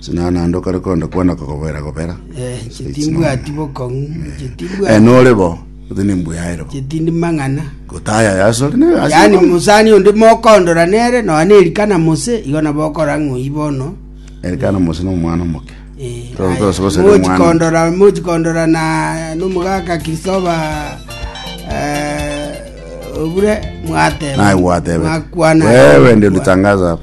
Sinana naende okare konde kwana kogobera gobera. Eh, inche timbwati bokong'u, inche Eh, timbwati, nore bo, ote nimbuyaere bo. inche tindi mang'ana. Gotaya yasore ne yasore. Yaani mosani onde mokondora nere, nonya nerikana mose, igo nabo okora ng'oyi bono. Erikana mose no mwana omoke. Eh, Toro- aya, toro sobo sere mwana. mochikondora mochikondora na nomogaka kristoba eh, obure mwateba Naye gwatebe. mwakwana Wewe ndio ulitangaza hapa.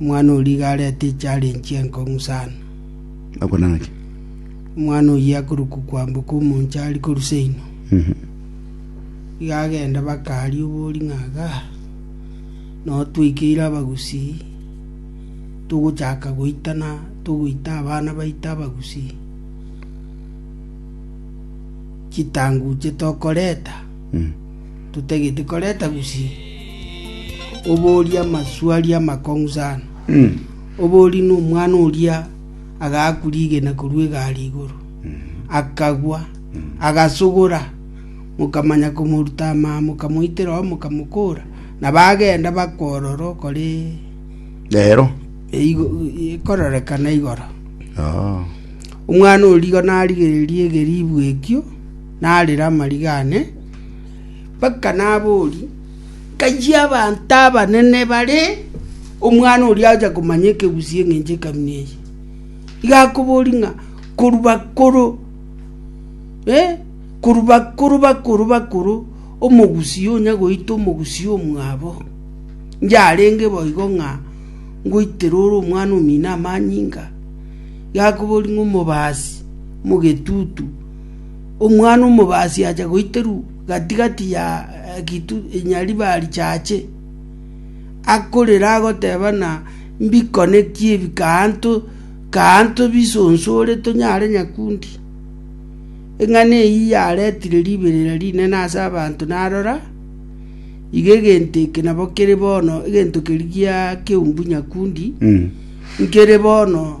Omwana o riga arete echarenji enkong'u sana. Agwo naki? Omwana oyio akorokwa kwamboka omonche ari korusa inwe. Iga agenda bakaaria obori ng'a aga nao twaikeire abagusii togochaka goitana togoita abana baito abagusii chitanguche tokoreta totagete koreta gusii, oborie amasuali amakong'u sana. Oborie nomwana oria agaakwa rigena korwa egari igoro, akagwa, agasogora, mokamanya komoruta amaa, mokamoitera oo, mokamokora, na bagenda bakworora okore Rero. eigo- ekorerekana igoro. Oh. Omwana oria igo narigereria egeribu ekio, narera amariga ane, Mpaka nabori, Nkayia abanto abanene bare omwana oria agocha komanya ekegusii eng'encho ekanuni eye. Iga akobori ng'a korwa bakoro, eh, korwa bakoro bakoro bakoro omogusii onya goita omogusii omwabo, yarenge boigo ng'a ngoitera ore omwana omino amanyinga. Iga akobori ng'a omobasi, omogetutu. Omwana omobaasi acha goiterwa gati‐gati ya egetu nyariba richache, akorera agoteba ng'a mbikone ki ebi kaanto kaanto bisonsore tonyare nyakundi. Eng'ana eyio yaretire riberera rinene ase abanto na arora, iga egento eke nabo kere bono egento keria gia keumbu nyakundi, nkere bono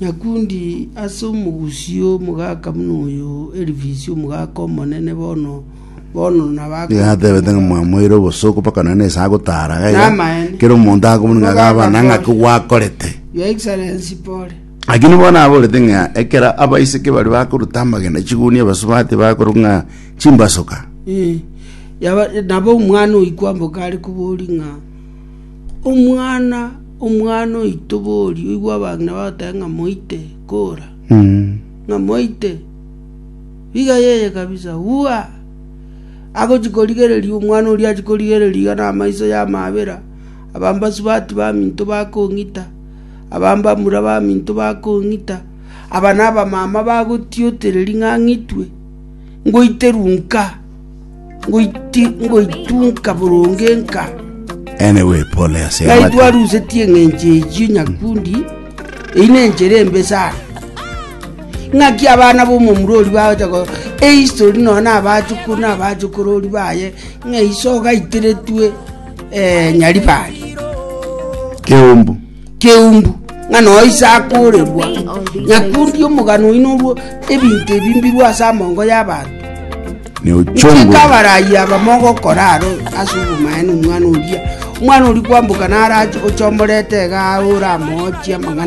Nyakundi ase omogusii omogaka buna oyo, Elifisi, omogaka omonene bono bono Nigo natebete ng'a mwamoeire obosooku mpaka nonye na esaa gotaara iga iga, Namaene. kera omonto akomoni ng'a gaba na ng'aki gwakorete. Your Excellency pole. Lakini bono aborete ng'a ekero abaiseke baria bakoruta amagena chiguni abasubati bakorwa ng'a chimbasuka. Eh, yaba- nabo omwana oyi kwamboka are kobori ng'a Omwana, omwana oito boria, oigwe abang'ina bagoteba ng'a moite, kora, ng'a moite, iga yeye kabisa, uaa! Agochia korigereria, omwana oria achia korigereria iga na amaiso yamabera, abambasubati baminto bakong'ita, abambamura baminto bakong'ita, aba na abamama bagotiotereri ng'a ang'itwe, ngoiterwe nkaa. ngoitunka boronge nka. Anyway, pole ase Ng'ai amato. twarusetie eng'encho eyio nyakundi, eyi nenchera embe sana. Ng'aki abana b'omomura oria bagocha ko ehistory nonya na abachukuru na abachokorori baye ng'a iso ogaiteretwe eh, Nyaribari. Keumbu. Keumbu, ng'a noyo ise akoorerwa, nyakundi omogano oino orwo ebinto ebi mbirwe ase amongo y'abanto. Ne ochongwe. Nchika abarayi abamo ogokora aro ase obomaene omwana oria. Omwana oria kwamboka narache, ochomorete iga aye oramochie amang'ana.